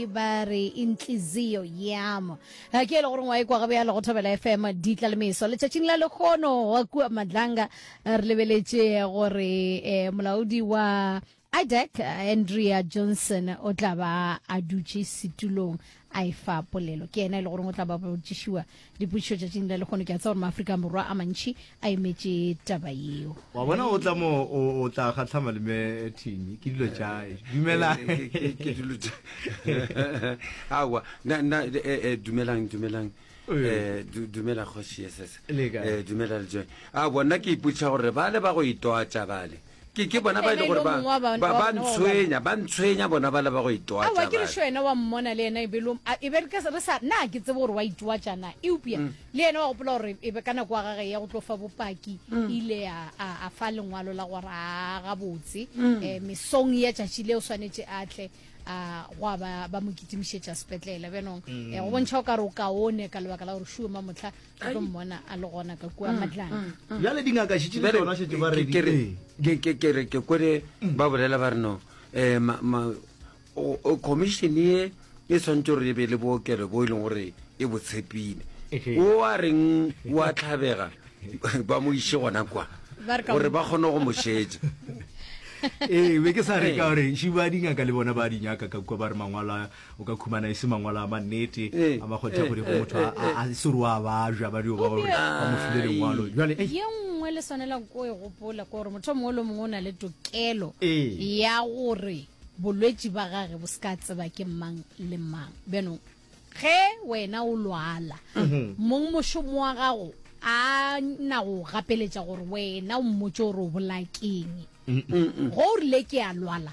ba re intlizio yamo ga ke ele gore ngwa e kwa gabe ya le go thobela fm di tla le meso letšatšing la lekgono wa kua madlanga re lebeletše gore eh, molaodi wa idec andrea johnson o tla ba a dutše setulong a e fa polelo ke yena e le goreng o tla ba botšišiwa Dipotšišo tšatšing la lekgono ke a tsa gore maafrika borwa a mantšhi a emetše taba yeo. Wa bona o tla mo o tla kgatlha malome Thini ke dilo tša dumela ke dilo tša awa na na dumelang dumelang eh dumela kgoši yes yes eh dumela le joy a bona ke ipotša gore bale ba go itwatša bale ke ke bona ba e le gore ba ba ba ntshwenya ba ntshwenya bona ba le ba go itoa tsa ke re sho ena wa mmona le ena e be lo e be ke re sa na ke tsebo gore wa itoa tsa na e upia mm. le ena wa gopola gore e be kana kwa gage ya go tlo fa bopaki mm. ile a a fa lengwalo la gore a ga botse mm. eh misong ya tšatši le o swanetse a tle a gwa ba ba mo kitimišetša sepetlele benong eh go bontšha o ka re o kaone ka lebaka la gore shuwe mamotlha a tlo mmona a le gona ka kua matlana bjale dingaka šitše le tsona šetse ba Ke- ke re- redi ke- ke- ke re ke kwele ba bolela ba re no um ma- ma- o- o- commission ye e tshwanetse gore e be le bookelo bo e leng gore e bo tshepile Ehe. o a reng wa tlhabega ba mo iše gona kwa Ba re ka gore mo- ba kgone go mo šetša ee be ke sa re ka gore šiba dingaka le bona ba di nyaka ka kua ba re mangwalo a- o ka khumana e se mangwalo a mannete eh, a makgothakgodi eh, go eh, motho a se ro a bajwa ba dio ba gore ba mo file lengwalo jwale ye nngwe le swanela ko e gopola gore motho mongwe le mongwe o na le tokelo ya gore bolwetši ba gage bo se ka tseba ke mang le mang bjanong ge wena o lwala mhm. mong mošomo wa gago a na go gapeletša gore wena o mmotse gore o bolakeng go o rile ke a lwala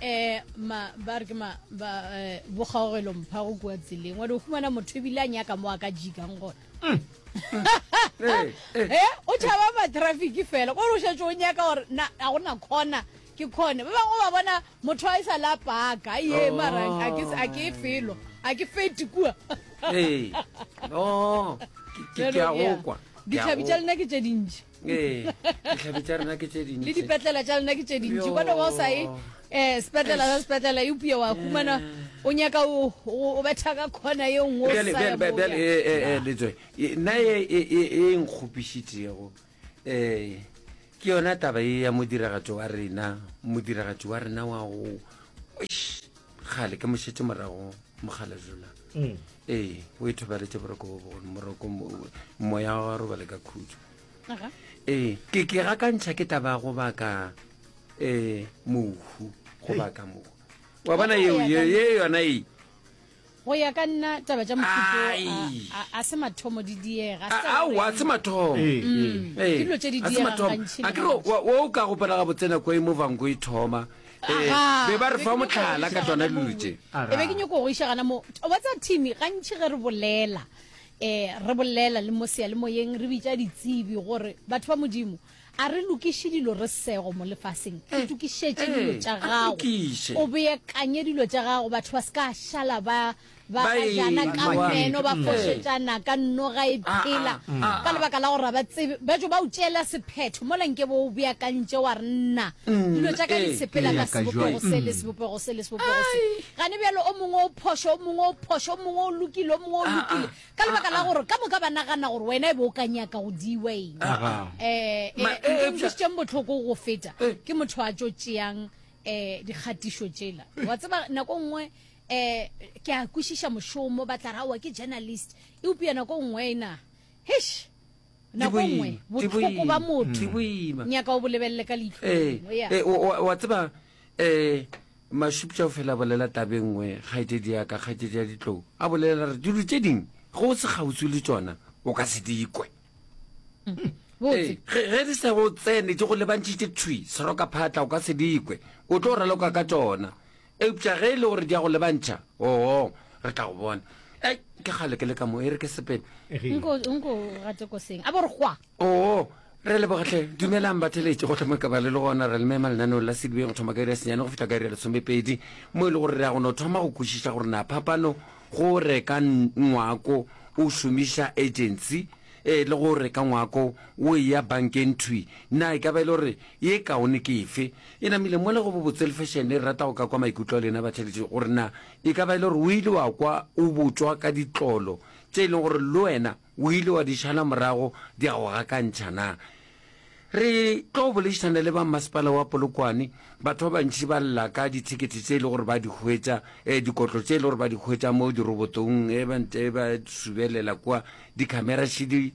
eh ma ba re ke ma ba eh, bokgaogelo mpha go kua tseleng wa di o fumana motho ebile a nyaka mo a ka jikang gona mm. eh, eh. eh o tšhaba matraffic fela kore o šetse o nyaka gore na a go na kgona ke kgone ba bangwe ba bona motho a e sa la paka ye oh. mara a ke felo a ke fete kua ee. no ke a go kwa ditlhabi tša lena ke tše dintši ee ditlhabi tša rena ke tše dintsi le dipetlela tša lena ke tše dintši Yo. bona wa o sa ye um sepetlela sa sepetlela eupio wa humana o nyaka o- o o betha ka khona ye nngwe o Bjale- sa ya bjale- moo o bjale, yang. eh, eh, eh, letswe e- nna e e- e- e nkgopišitšego um ke yona taba e ya modiragatši wa rena modiragatši wa rena wa go Eish. gale ke mošetse morago mogalajula mm. ee o e thobaletse boroko bo bogolo moroko moya wa robale ka khutso ee ke ke ga ka ntšha ke taba go baka um mohu go baka mohu wa bona eo ye yona e go ya ka nna taba tša mofuto a se mathomo di diega aowa se mathomo ee. Mm. Ee. ke dilo tse di diega gantšhi a kere o ka gopela ga botsenako e mo vanko e thoma Agaa. be ba re Ke fa nyoko motlhala go ka iša tsona gana dilo mongwe. tše. Agaa. E be ke nyoko go iša gana mo wa tsa thimi gantši ge re bolela um re bolela le mo seyalemoyeng re bitša ditsebi gore batho ba modimo a re lokiše dilo re sego mo lefaseng Eh, itokišetše eh, dilo tša a gago lokiše. o beakanye dilo tša gago batho ba se ka šala ba Ba e Bagajana ka lwa. meno ba fošetšana ka noga e phela ka lebaka la gore ga ba tsebe. Batšo ba o tšeela sephetho mola nke bo o beakantše wa re nna dilo tša ka di sepela ka sebopego se le sebopego se le sebopego se. Gane bjalo o mongwe o phošo, o mongwe o phošo, o mongwe o lokile, o mongwe o lokile ka lebaka la gore ka moka ba nagana gore wena e be o ka nyaka go diwa eng. Um Ma- e- eupša- nkutlwisitseng bohloko go feta ke motho a tšo tšeang um dikgatišo tšela wa tseba nako nngwe um ke a kwešiša mošomo ba tla ra wa ke journalist eupša nako nngwe ena hish nako nngwe botlhoko ba motho nyaka o bolebelele ka leitlhowa tseba um mašupša o fela bolela tabe nngwe kgaetedi yaka kgaetedi ya ditlou a bolelela re dilo tše ding go se kgautso le tsona o ka se dikwe ge di sa go tsene di go lebantšhitše thwi seroka phatla o ka se dikwe o tlo raloka ka tsona Eupša ge e le gore di a go lebantšha, oo, re tla go bona. Ei, ke kgale ke le ka mo, e re ke sepele. Nko, nko gate koseng, a bo re gwa. Oo, re leboga hle. Dumelang batheletši, go hloma ka ba le le gona re le mema lenaneong la Sedibeng go thoma ka iri ya senyane go fihla ka iri ya lesomepedi, mo e le gore re ya go no thoma go kwešiša gore na phapano go reka ngwako o šomiša agency e le go reka ngwako o eya bankeng thwi na e ka ba e le gore ye kaone ke efe. E namile mola go bobotse le fešene, re rata go ka kwa maikutlo a lena batheletši gore na e ka ba e le gore o ile wa kwa o botšwa ka ditlolo tše e leng gore le wena o ile wa di šala morago di a go gakantšha na. Re tlo bolešišana le ba Mmasepala wa Polokwane, batho ba bantši ba lla ka dithekete tše e le gore ba di hwetša, eh, dikotlo tše e le gore ba di hwetša mo dirobotong, eh, ba nte ba subelela kua, dikhamera šidi,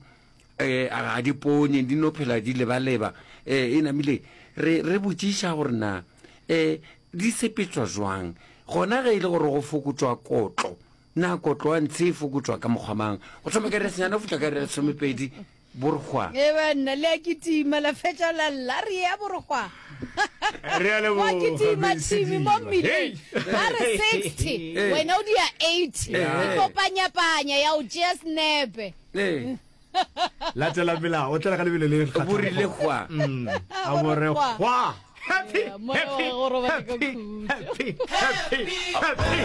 eh, ga di ponye di no phela di lebaleba eh, e namile re, re botšiša gore na eh, di sepetswa jwang gona ge e le gore go fokotswa kotlo na kotlo wa ntshe e fokotswa ka mokgwamang go thoma ka resenyana go fitlha ka re lesomepedi borgwa e banna le a kitima la fetša la lla re ya borgwa Re a leboga, Wa kitima Miss thimi mo Diba. mmileng ba re 60 wena o dia 80 ikopanyapanya ya o tšea senepe Ee. Latela melao, o tlele ka lebelo le kgathago. Bo rile gwa. Mm, a bo re gwa. Happy, happy, happy, happy, happy, happy.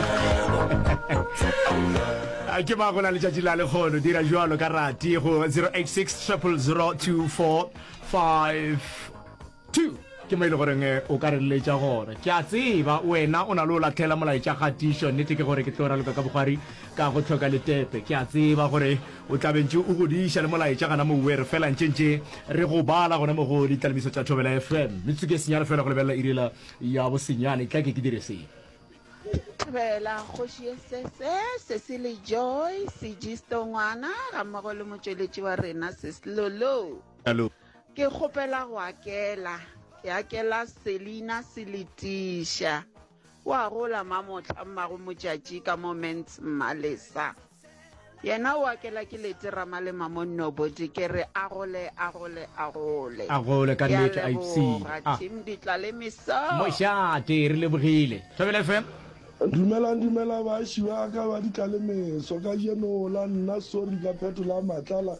A ke ba go na letšatši la lekgono dira jwalo ka rati go 086 000 24 5 Two, Ke mo e le goreng o ka re leletša gore, Ke a tseba wena o na le go lahlela molaetša kgatišo. Nnete ke gore ke tlo raloka ka bogwari ka go hloka letepe. Ke a tseba gore o tla be ntše o godiša le molaetša gana mowe re fela ntše ntše re go bala gona mo go Ditlalebiso tša Thobela FM. Metsotso ke senyane fela go lebelela iri la ya bosenyane. Etla ke ke dire se. Thobela, Kgoši ye sese, Cecily Joy, Sigisto ngwana gammogo le motšweletši wa rena Sis Lolo. Ke kgopela go akela, ke akela Selina Seletiša. O a gola mamohla mmago motšatši ka mo Ments Mmalesa. Yena o akela ke lete ramalema mo Nnobodi ke re a gole a gole a gole. A gole ka nnete a ipsina. Ah. Team Ditlalemiso. Mošate re lebogile. Thobela FM. Dumelang dumela baaši ba ka ba Ditlalemeso. Kajeno la nna sorry ka phetola matlala.